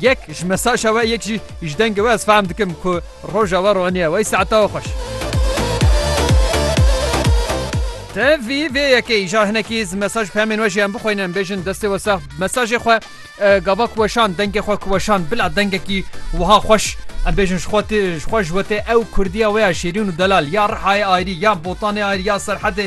Yek ji mesaja we yek jî ji dengê we ez fehm dikim ku roja we roniye wey saeta we xweş. Te vî vê yekê îja hinekî ji mesaj pemên we jî em bixweynin em bêjin destê we sax mesajê xwe gava ku weşan dengê xwe ku weşan bila dengekî wiha xweş em bêjin ji xwe tê ji xwe ji we tê ew kurdiya wê ya şêrîn û delal ya rihayê ayrî ya botanê ayrî ya serhedê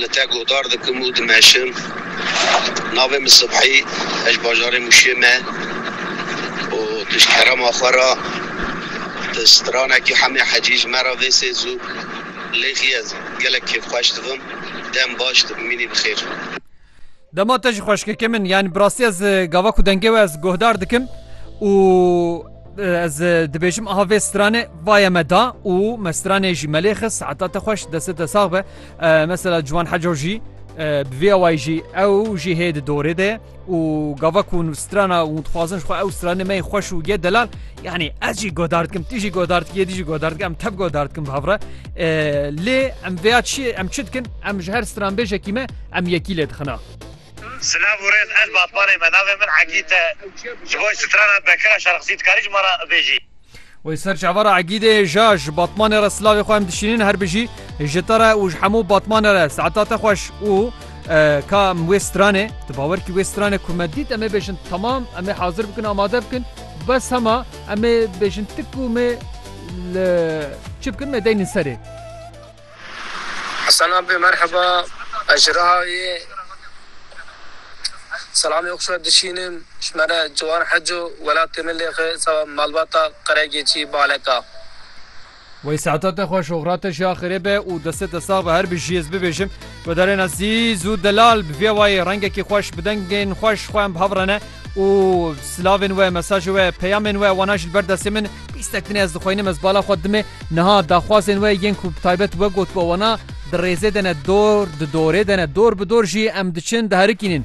li te guhdar dikim û dimeşim. Navê min Sibhî ez ji bajarê Mûşê me û tu ji kerema xwe re di stranekî Hemê Hecî ji me re vê sê zû lêxî ez gelek kêfxweş dibim. Dem baş dibimînî bi xêr. Dema te ji xweşkeke min yani bi rastî ez gava ku dengê we ez guhdar dikim û ez dibêjim aha vê stranê vaye me da û me stranê jî me lê xis heta te xweş destê te sax be mesela ciwan heco jî bi vê awayî jî ew jî hê di dorê de û gava ku strana û dixwazin xwe ew stranê me xweş û ye delal yanî ez jî godar dikim tî jî godar dikiye dijî godar dikim em tep godar dikim bi hevre lê em vêya çi em çi dikin em ji her stranbêjekî me Em yekî lê dixin a. Silav û rêz ez Batmanê me navê min Egîd e ji bo strana Bekira Şarxisî dikarî ji me re bêjî. Wê ser çavara Egîdê ja ji Batmanê re silavê xwe em dişînin her bijî ji te re û ji hemû Batmanê re saeta te xweş û ka em wê stranê tu bawer kî wê stranê ku me dît em ê bêjin tamam em ê hazir bikin amade bikin bes hema em ê bêjin ti ku me li çi bikin me deynin serê. Hasan Abbê merheba, ez ji Rihayê selamê xwe dişînim, ji me re ciwan heco, welatê min lê xwe seba malbata Qeregêçî Baleka. Wey saeta te xweş oxira te jî axirê be û destê te sax be her bijî ez bibêjim guhdarên ezîz û delal bi vê wayî rengekî xweş bi dengên xweş xwe em bi hev rene. Û silavên we, mesajê we, peyamên we wana jî li ber destê min. Pîstek din e ez dixwînim ez bala xwe dime niha daxwazên we yên ku bi taybet we gotibo wana di rêzê de ne dor di dorê de ne dor bi dor jî em diçin diherikînin.